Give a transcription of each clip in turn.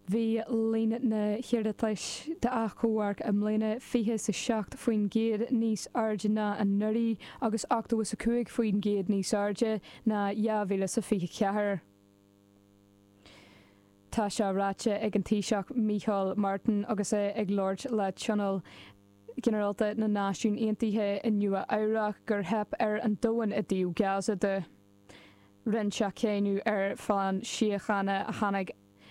Bhí líon na n-iarratas d'achomharc i mbliana 27% níos airde ná anuraidh agus 85% níos airde ná 2024. Tá sé ráite ag an Taoiseach Micheál Martin agus é ag labhairt le Tionól Ginearálta na Náisiún Aontaithe i Nua Eabhrach gur theip ar an domhan i dtaobh Gaza de. Rinne sé cáineadh ar phlean síochána a tháinig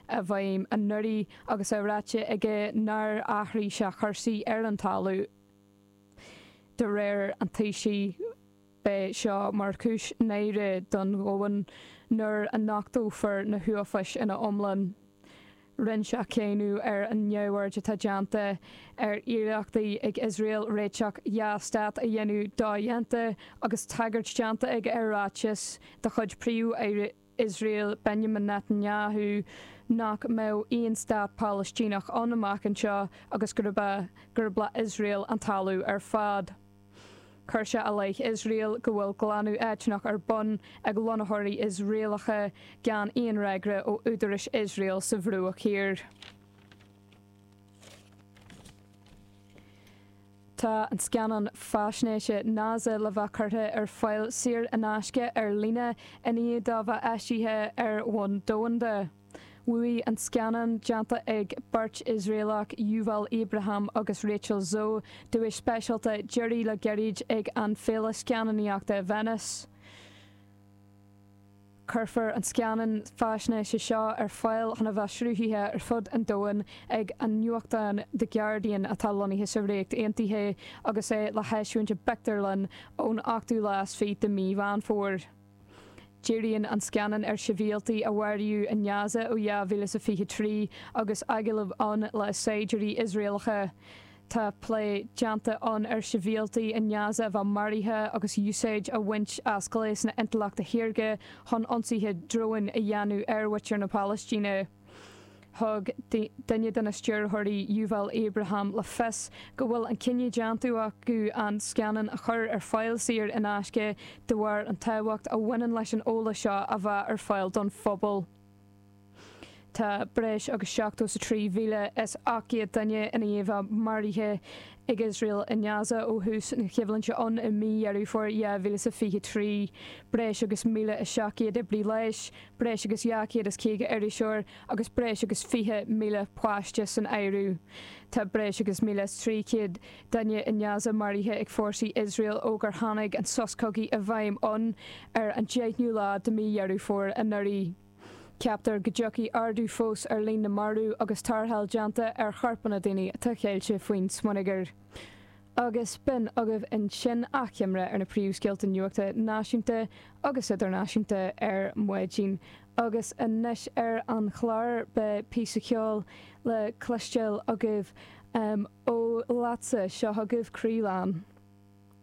i bhfeidhm anuraidh agus é ráite aige nár athraigh sé cúrsaí ar an talamh. De réir an Taoisigh beidh seo mar chúis náire don domhan nuair a nochtófar na huafáis ina iomlán. Rinne sé cáineadh ar an neamhaird atá déanta ar iarrachtaí ag Iosrael réiteach dhá stát a dhéanamh dodhéanta agus tagairt déanta aige ar ráiteas de chuid Príomh-Aire Iosrael Benjamin Netanyahu nach mbeadh aon stát Palaistíneach ann amach anseo agus gurb le Iosrael an talamh ar fad. Chuir sé i leith Iosrael go bhfuil glanadh eitneach ar bun ag lonnaitheoirí Iosraelacha gan aon fhreagra ó údarais Iosrael sa Bhruach Thiar. Tá an scannán faisnéise Naza le bheith curtha ar fáil saor in aisce ar líne i ndiaidh dó bheith eisithe ar bhonn domhanda. Bhuaigh an scannán, déanta ag beirt Iosraelach, Yuval Abraham agus Rachel Szor, duais speisialta deiridh le gairid ag an Féile Scannánaíochta Venice. Cuirfear an scannán faisnéise seo ar fáil chun a bheith sruthaithe ar fud an domhain ag an nuachtán The Guardian atá lonnaithe sa Ríocht Aontaithe agus é le heisiúint i bpictiúrlann ón ochtú lá is fiche de mí Mheán Fómhair. Díríonn an scannán ar shibhialtaigh a maraíodh i nGaza ó 2023 agus agallamh ann le saighdiúirí Iosraelacha. Tá plé déanta ann ar shibhialtaigh i nGaza a bheith maraithe agus úsáid á bhaint as gléasanna intleachta shaorga chun ionsaithe dróin a dhéanamh ar mhuintir na Palaistíne. Thug duine de na stiúrthóirí, Yuval Abraham, le fios go bhfuil an cinneadh déanta acu an scannán a chur ar fáil saor in aisce de bharr an tábhacht a bhaineann leis an eolas seo a bheith ar fáil don phobal. Tá breis agus 73,800 duine ina iomlán maraithe ag Iosrael i nGaza ó thús na coimhlinte ann i mí Dheireadh Fómhair 2023, breis agus 1,700 oibrí leighis, breis agus 250 iriseoir agus breis agus 20,000 páiste san áireamh. Tá breis agus míle is trí chéad duine i nGaza maraithe ag fórsaí Iosrael ó gur tháinig an sos cogaidh i bhfeidhm ann ar an deichniú lá de mhí Dheireadh Fómhair anuraidh. Ceaptar go dtiocfaidh ardú fós ar líon na marbh agus tarrtháil déanta ar chorpanna daoine atá ceilte faoin smionagar. Agus b'in agaibh ansin achoimre ar na príomhscéalta nuachta náisiúnta agus idirnáisiúnta ar maidin. Agus anois ar an chlár beidh píosa ceoil le cloisteáil agaibh ó Leatsa. Seo chugaibh Croílán.